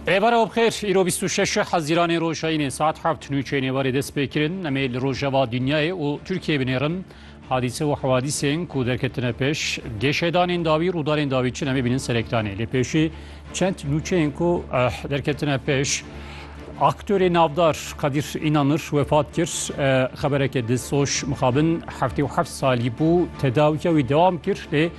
Rêbara Obxêr, îro 26 Hezîranê Rojayînê saet heft nûçeyê nêvarê dest pê kirin. Em ê li rojeva dinyayê û Tirkiyeyê binêrin. Hadîse û hewadîsên ku derketine pêş, gêşedanên dawî, rûdarên dawî çin em ê bînin serektanê. Lê pêşî çend nûçeyên ku eh, derketine pêş, aktörê navdar Kadîr Înanir wefat kir. Eh, Xebereke di soş mixabin heftê û heft salî bû, tedawiya wî dewam kir lê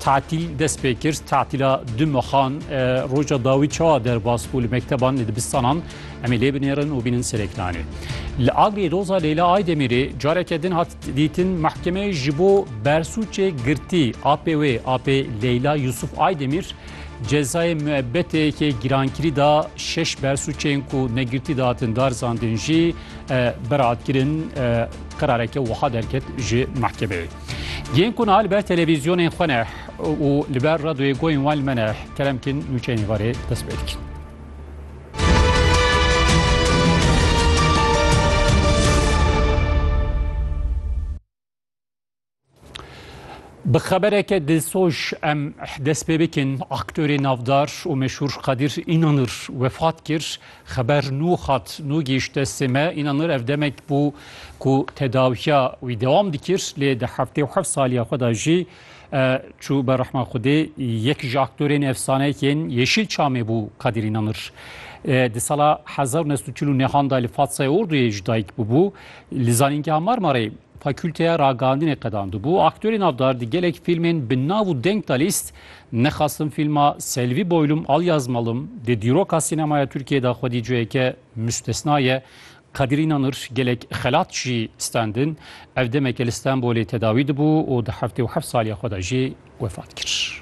Tatil dest pê kir tatila du mexan roja dawî çawa derbas bû li mekteban li dibistanan em ê lê binêrin û bînin serêklanê. Li Agirê doza Leyla Aydemirê careke din hat dîtin mehkemeyê ji bo bersûçê girtî apê wê apê Leyla Yusuf Aydemir cezayê müebbetê yekê girankirî da şeş bersûçên ku negirtî datin dar zandin jî berat kirin qirareke wiha derket ji mehkemeyê. Yên ku niha li ber televîzyonên xwe ne û li ber radyoyê goyên wan li me ne keremkîn nûçeyên varê dest pê dikin. Bi xebereke dilsoz em dest pê bikin aktorê navdar û meşhûr Kadir Înanir wefat kir Xeber nû hat, nû gihîşt destê me. Înanir ev demek bû ku tedawiya wî dewam dikir lê di heftê û heft saliya xwe de jî çû ber rehma Xwedê. Yek ji aktorên efsaneyek yên Yeşîl Çamê bû Kadîr Înanir. Di sala hezar û neh sed û çil û nehan de li Fatsayê Orduyê jî dayik bûbû. Li Zanîngeha Marmarê Fakûlteya Ragihandinê qedandibû. Aktorê navdar di gelek fîlmên bi nav û deng de lîst Nexastim fîlma Selvi Boylum Al Yazmalım di dîroka sînemaya Tirkiyeyê de xwedî ciheke mustesna ye. Kadir Înanır gelek xelat jî stendin. Ev demeke li Stenbolê tedawî dibû û di heftê û heft saliya xwe de jî wefat kir.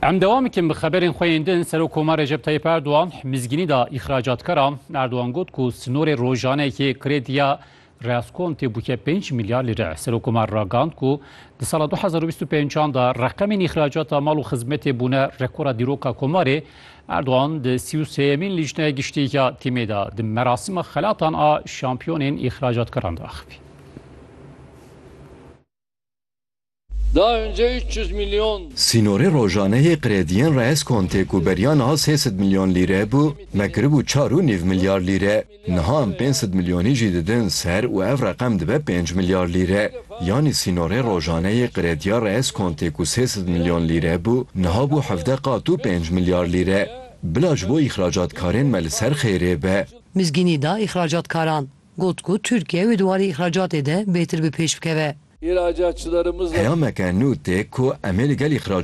Em devam dikin bi xeberên xwe yên din Serokkomar Recep Tayyip Erdogan mizgînî da îxracatkara Erdogan got ku sinorê rojanekê krediya Reaskontê bûke 5 milyar lîre. Serokkomar ragand ku di sala 2025 da reqemên îxracata mal û xizmetê bûne rekora dîroka komarê Erdogan di sî û sêyemîn Lîjneya Giştî ya TM'ê de di merasîma xelatan a şampiyonên îxracatkaran de axivî. Sînorê rojane yê qrediyên Reis Conte ku beriya niha sê sed milyon lîre bû, me kiribû çar û nîv milyar lîre. Niha em pênc sed milyonî jî didin ser û ev reqem dibe pênc milyar lîre. Yanî sînorê rojane yê qirêtiya re eskontê ku sê sed milyon lîre bû, niha bû hevdeh qat û pênc milyar lîre. Bila ji bo îxracatkarên me li ser xêrê be. Mizgînî da îxracatkaran. Got ku Tirkiye wê di warê îxracatê de bêhtir bi pêş bikeve. Peyameke nû tê ku em ê li gel îxracatkarên